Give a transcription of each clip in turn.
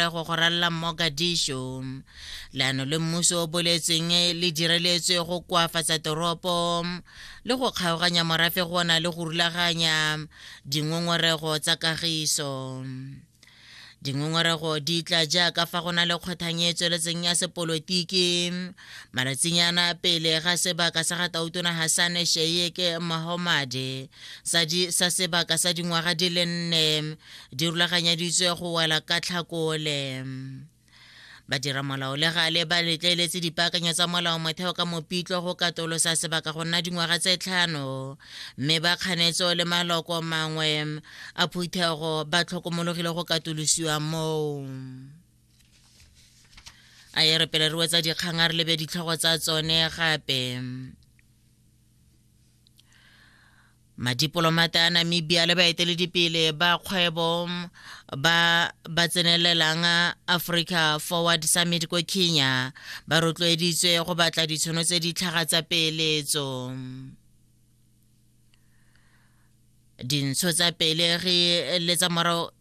go go ralla mogadišo leano le mmuso o boletsweng le direletswe go koafatsa toropo le go kgaoganya morafe go na le go rulaganya dingongorego tsa kagiso dingongorego di tla jaaka fa go na le kgothang e tsweletseng ya sepolotiki malatsinyana pele ga sebaka sa ga tautona hasane sheyeke mahomade sa sebaka sa dingwaga di le nne di rulaganyaditswe go wela ka tlhakole badiramolao le gale ba letleletse dipaakanyo tsa molao motheo ka mopitlo go katolosa sebaka go nna dingwaga tse tlhano mme ba kganetso le maloko mangwe a phuthego ba tlhokomologile go katolosiwa moo a e re pele re wetsa dikgang a re lebe ditlhogo tsa tsone gape Madipolomata a Namibia le baeteledipele ba kgwebo ba ba tsenelelang Africa Forward Summit ko Kenya ba rotloeditswe go batla ditshono tse di tlhaga tsa peeletso. Dintsho tsa peelegi le tsa morago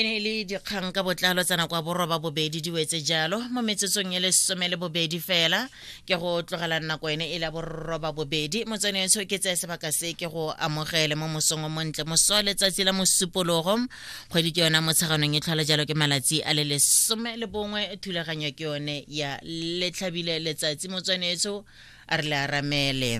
e ne e le dikgang ka botlalo tsa nako ya boroba bobedi di wetse jalo mo metsotsong e le some le bobedi fela ke go tlogelang nako ene e le boroba bobedi motsone etsho ke tseye sebaka se ke go amogele mo mosong o montle moso letsatsi la mosupologo kgwedi ke yona motsheganong e tlhola jalo ke malatsi a le lesome le bongwe thulaganyo ke yone ya letlhabile letsatsi motswanetso a re le aramele